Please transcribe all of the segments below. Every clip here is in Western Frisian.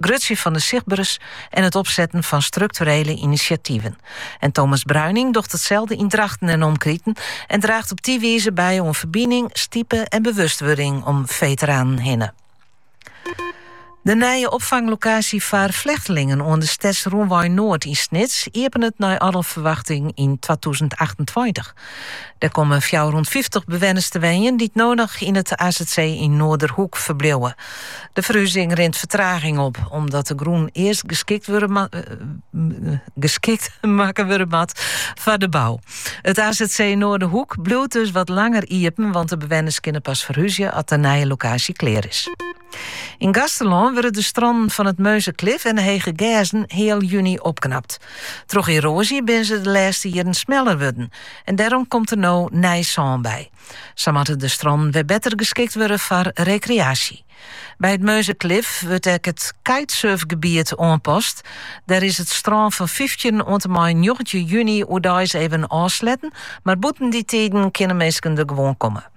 grutsjen fan de sichtberens en it opsetten fan strukturele inisjativen. En Thomas Bruining docht itselde yn Drachten en omkriten en draacht op dy wize by oan ferbining, stipe en bewustwurding om veteranen hinne. De nije opfanglokaasje foar flechtelingen oan de Stedsrûnwei Noard yn Snits iepenet nei alle ferwachting yn 2028. Der komme fjouwerhûndfyftich bewenners te wenjen dy't no noch yn it azc yn Noarderhoek ferbliuwe. De ferhuzing rint fertraging op, omdat de grûn earst geskikt wurde ma- geskikt makke wurde moat foar de bou. It azc Noarderhoek bliuwt dus wat langer iepen, want de bewenners kinne pas ferhuzje as de nije lokaasje klear is. Yn Gaasterlân wurde de strannen fan it Murnzer Klif en de Hege Gerzen heal juny opknapt. Troch eroazje binne se de lêste jierren smeller wurden en dêrom komt der no nij sân by. Sa moatte de strannen wer better geskikt wurde foar rekreaasje. By it Murnzer Klif wurdt ek it kitesurfgebiet oanpast. Dêr is it strân fan fyftjin oant en mei njoggentjin juny oerdeis even ôfsletten, mar bûten dy tiden kinne minsken der gewoan komme.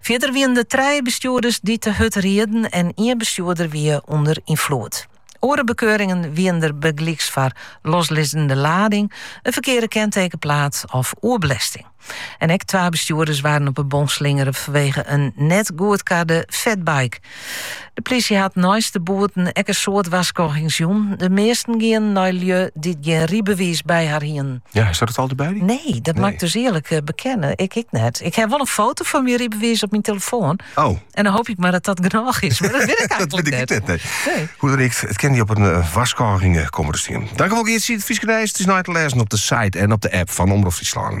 Fierder wienen der trije bestjoerders dy't te hurd rieden en ien bestjoerder wie ûnder ynfloed. Oare bekeuringen wienen der bygelyks foar loslizzende lading, in ferkearde kentekenplaat of oerbelêsting. En ek twa bestjoerders waarden op 'e bon slingere fanwege in net goedkarde fatbike. De plysje hat neist de boeten ek in soad warskôgings jûn. De measten gienen nei lju dy't gjin rybewiis by har hienen. Ja, hasto it altyd by dy? Nee, dat moat ik dus earlik eh, bekenne. Ik ek net. Ik ha wol in foto fan myn rybewiis op myn telefoan. Oh. En dan hoop ik mar dat dat genôch is. Mar dat wit ik eigentlik dat wit ik net. nee. Hoe dan ek, it kin dy op in uh, warskôging komme te stean. Tankewol, Geartsje. It Fryske nijs. It is nei te lêzen op de site en op de app fan Omrop Fryslân.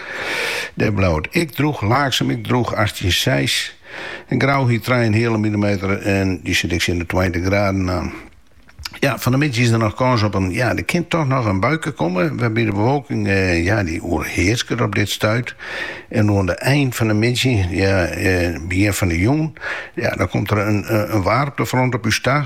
Dêr bleau it ek drûch, Laaksum ek drûch, achttjin seis. En Grou hie trije en in heale milimeter en dy sit ek tsjin de tweintich graden oan. Ja, fan de middei is der noch kâns op in, ja, der kin toch noch in buike komme, wêrby't de bewolking, ja, dy oerhearsket op dit stuit. En oan de ein fan de middei, ja, begjin fan de jûn, ja, dan komt der in waarmtefront op ús ta.